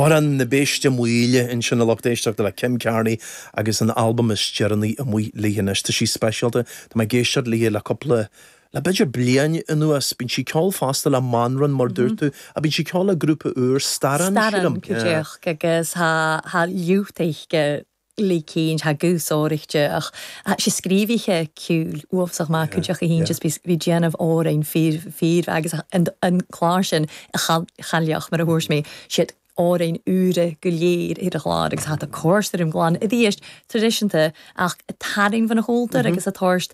Amhrán na Béiste Maoile, ansin a lucht éisteachta le Kim Carnie agus an albam is deireanaí amuigh léi anois. Tá sí speisialta, tá mé ag éisteacht léi le cúpla, le b'fhéidir bliain anuas. Bíonn sí ceol fosta le Mànran, mar dúirt tú, ach bíonn sí ceol le grúpa úr, Staran, sílim. Staran, go díreach, agus tá lúth uisce le cinn ha gus óric de ach ha si scríobhaí che ciúil uafasach maith cuid ach a hín just bhí bhí déanamh orainn fír fír agus an an clár sin a chal chailleach mar a thabhairt mé siad orainn úra go léir ar a chlár agus hat a cóir ar an gclann i dtíist tradiisinta ach a tarraing fan a hóltar agus a tóirst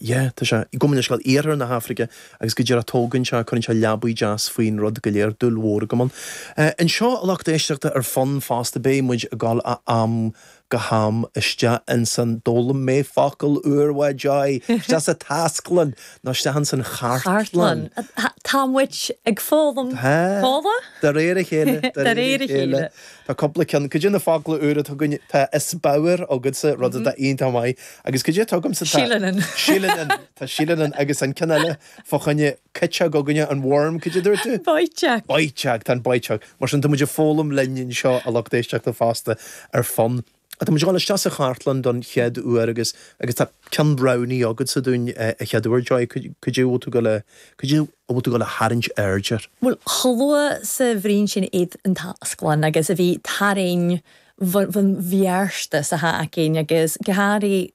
Yeah, tá sé. I gCumann le ceol Iarthar na hAfraice agus go díreach tógann sé, cuireann sé leabaidh deas faoin rud go léir, dúil mhór agam ann. Eh, anseo a lucht éisteachta ar Fonn fosta, beidh muid ag gabháil ó am go ham isteach ansan, d'fhoghlaim mé focal úr, bhuel, Joy, isteach sa taisclann, nó isteach ansan chartlann. Chartlann. Tá muid ag foghlaim focla. De réir a chéile, de réir a chéile. Tá cúpla ceann. Cad é na focla úra atá againn, tá 'is bodhar agatsa', rud atá iontach maith, agus cad é atá agamsa, tá. Seilleanan. Seilleanan. Tá seilleanan agus an ceann eile fá choinne cuiteog againne an worm, cad é a dúirt tú? Boiteag. Boiteag, tá an boiteag. Mar sin, tá muid ag foghlaim linn anseo, a lucht éisteachta fosta, ar Fonn. Tá muid ag gabháil isteach sa chartlann don chéad uair agus tá ceann roghnaithe agatsa dúinn an chéad uair. Joy, cad é a bhfuil tú ag gabháil, cad é a bhfuil tú ag gabháil a tharraingt aird air? Bhuel, chomh luath 's a bhruidhinn sinn air an tasglann agus a bhith tarraing bhon bheartas a tha againn agus go háirithe